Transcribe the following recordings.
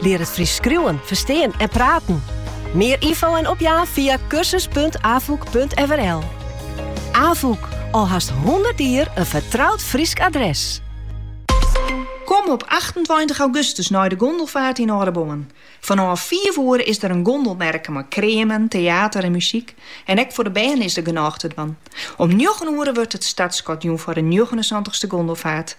Lear it Frysk skriuwen, ferstean en praten. Mear ynfo en opjaan fia kursus.afûk.nl. Afûk, al hast hûndert jier in fertroud Frysk adres. Kom op achtentweintich augustus nei de gondelfaart yn Aldeboarn. Fanôf fiif oere is der in gondelmerke mei kreamen, teater en muzyk. En ek foar de bern is der genôch te dwaan. Om njoggen oere wurdt it startskot jûn foar de njoggenensantichste gondelfaart.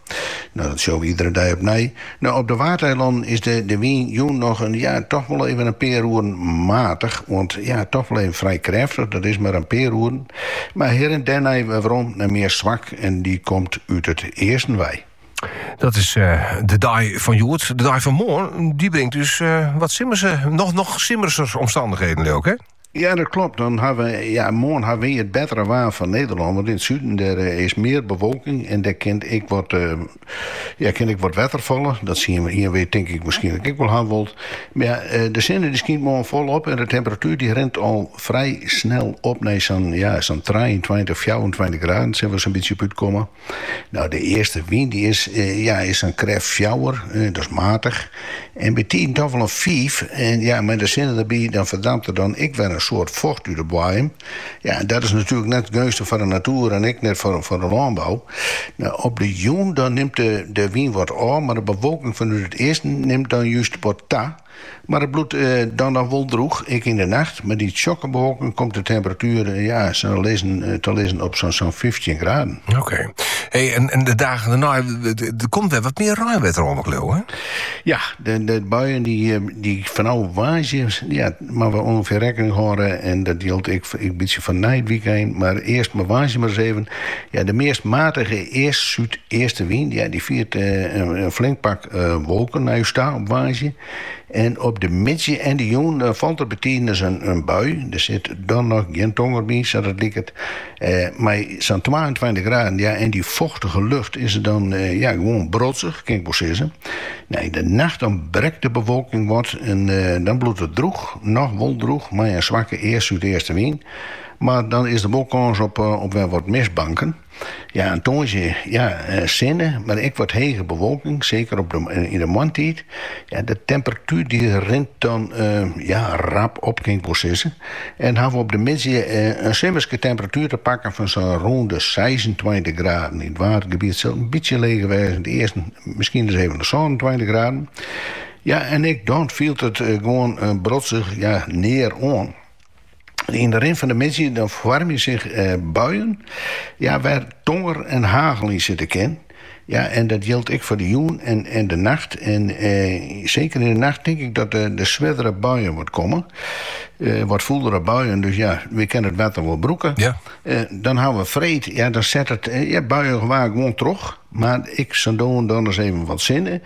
Nou, dat sjoch we iedere dei opnij. Nou, op de Waadeilannen is de, de wyn jûn noch in, ja, toch wol even in pear oeren matich oant, ja, toch wol even frij krêftich, dat is mar in pear oeren. Mar hjir en dêrnei werom in mear swak en dy komt út it easten wei. Dat is eh, de dei fan hjoed. De dei fan moarn, dy bringt dus eh, wat simmerse, noch, noch simmerser omstandichheden, ek, hè? Ja, dat klopt. Dan ha we, ja, moarn ha we it bettere waar fan Nederlân, want yn it suden dêr is mear bewolking en dêr kin ek wat, ja, kin ek wat wetter falle. Dat soene we, hiene wy tink ik wierskynlik ek wol ha wold. Mar ja, de sinne dy skynt moarn folop en de temperatuer dy rint al frij snel op nei sa'n, ja, sa'n trijeentweintich, fjouwerentweintich graden, sil we sa'n bytsje op útkomme. No, de eastewyn dy is ja is sa'n krêft fjouwer, dat's matich, en by tiden dochs wol in fiif, en ja mei de sinne derby dan ferdampt der dan ek wer in soad focht út de boaiem. Ja en dat is natuerlik net geunstich foar de natoer en ek net foar de lânbou. No, op de jûn dan nimt de wyn wat ôf, mar de bewolking fanút it easten nimt dan just wat ta. Mar it bliuwt dan noch wol drûch, ek yn de nacht. Mei dy tsjokke bewolking komt de temperatuer te lizzen op sa'n fyftjin graden. Oké. En de dagen dêrnei, der komt wer wat mear reinwetter oan, leau ik? Ja, de buien dy fanôf woansdei moatte we ûngefear rekkening hâlden. En dat jildt ek in bytsje foar nei it wykein. Mar earst mar woansdei mar ris even. Ja, de meast matige east-súdeastewyn dy't fiert in flink pak wolken nei ús ta op woansdei. En op de middei en de jûn falt der by tiden ris in bui. Der sit dan noch gjin tonger by, sa't it liket. Mei sa'n twaentweintich graden, ja, en dy fochtige lucht is it dan gewoan brotsich, kin ik wol sizze. Yn de nacht dan brekt de bewolking wat en dan bliuwt it drûch, noch wol drûch, mei in swakke east-súdeastewyn. Mar dan is der wol kâns op wer wat mistbanken. Ja, en tongersdei ja, sinne, mar ek wat hege bewolking, seker op de yn de moarntiid. Ja, de temperatuer dy rint dan ja, rap op kin ik wol sizze. En ha we op de middei in simmerske temperatuer te pakken fan sa'n rûn de seisentweintich graden. Yn it Waadgebiet sil it in bytsje leger wêze, yn it easten miskien ris even de sânentweintich graden. Ja, en ek dan fielt it gewoan brotsich ja, near oan. Yn de rin fan de middei dan foarmje sich eh, buien ja, wêr't tonger en hagel yn sitte kin. Ja, en dat jildt ek foar de jûn en en de nacht. En eh, seker yn de nacht tink ik dat der der swerdere buien wat komme. Eh, wat fûlere buien, dus ja, we kinne it wetter wol brûke. Ja. Eh, dan hawwe we freed, ja, dan set it eh, ja, buiegewaar gewoan troch. Mar ek sa no en dan ris even wat sinne.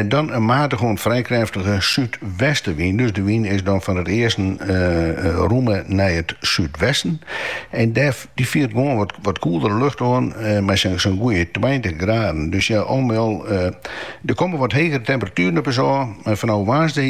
Dan in matige oant't frij krêftige súdwestewyn. Dus de wyn is dan fan it easten rûme nei it súdwesten. En dêr dy fiert gewoan wat, wat koeldere lucht oan mei sa'n sa'n goede tweintich graden. Dus ja, al mei al, der komme wat hegere temperatueren op ús ôf, mar fanôf woansdei